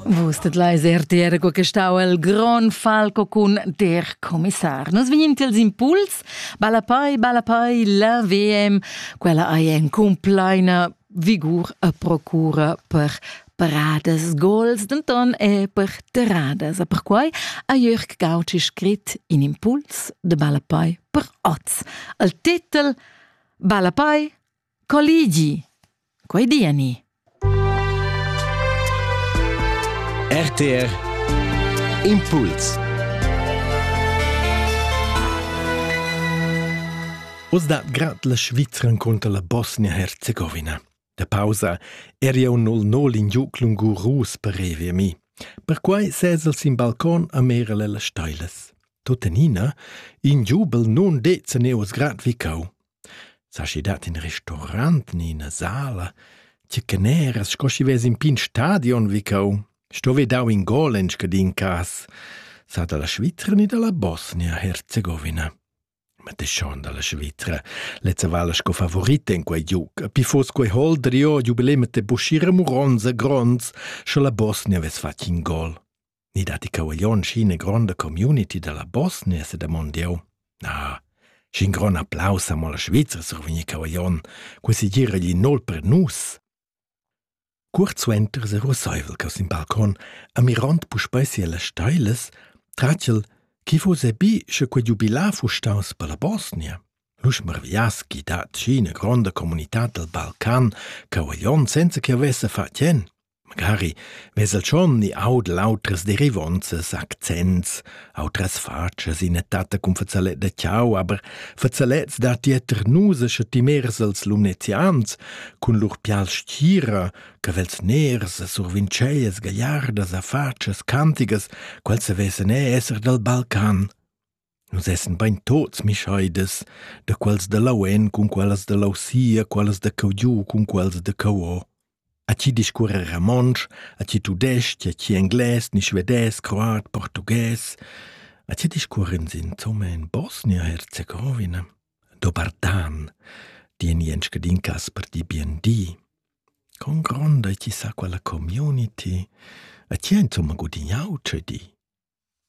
Vus tedlais RTR co che stau il Grand Falco cun der Kommissar. Nus vegnin tils impuls, balapai, balapai, la VM, quella ei en complaina vigur a procura per paradas gols, denton e per terradas. A perquai ha Jörg Gauci scrit in impuls de balapai per oz. Al titel Balapai Colligi. Quei di ani. RTR Impuls Oz dat grad la Svizra contro la Bosnia-Herzegovina. Da pausa eri eu nol nol in giuc lungurus per revi a mi. Perquai ses el sin balcon a mera le la stailas. Tuttenina, in giubel nun dezza neos grad vicau. Schi dat in restaurant ni ina sala, tge caneras sco schi vess in pign stadion vi cau. Sto ve dau in gol en scadin cas, sa dalla Svizra ni dalla Bosnia-Herzegovina. Ma te schon dalla Svizra. Lezza vala sco favorita en quei giug. Pi fos quei hol drio giubilemet de buschira muronza gronds, sche la Bosnia vess fatg in gol. Ni datti cavaglion schi ina gronda community dalla Bosnia, se damond jeu. Na, sc'in gron applaus ha mo la Svizra survegni cavaglion, quei si gira gli nol per nus. Cuort suenter se russaivel cau sin balcon, amirond puspei sia las steilas, tratgel, chi fuss ebi sche quei giubilar fu staus per la Bosnia. L'us marviaschi dat schi ina gronda comunità dal Balcan, cavaglion senza che avesse fatg en. Magari vesel schon ni audel autras derivonzas, accents, autras fatschas, ina tatta cun fazalet da chau, aber fazalets datti eter nus e sche ti mers als lumnezians cun lur pial stgira, cavels ners e survincellas gagliardas a fatschas cantigas, quels se vesan e esser dal Balcan. Nus essan bein tuts mischaidas, da quels da lauen cun quellas da lausia, quellas da cheu giu cun quellas da cheu o. A ti discuorra romontsch, a ti tudestg, a ti englais, ni svedès, croat, portughes. A ti discuorran insomma in Bosnia-Herzegowina. Dobardan, di en ien scadin cas per di bien di. Con gronda ti sa quella community. A ti insomma gudignau, ce di.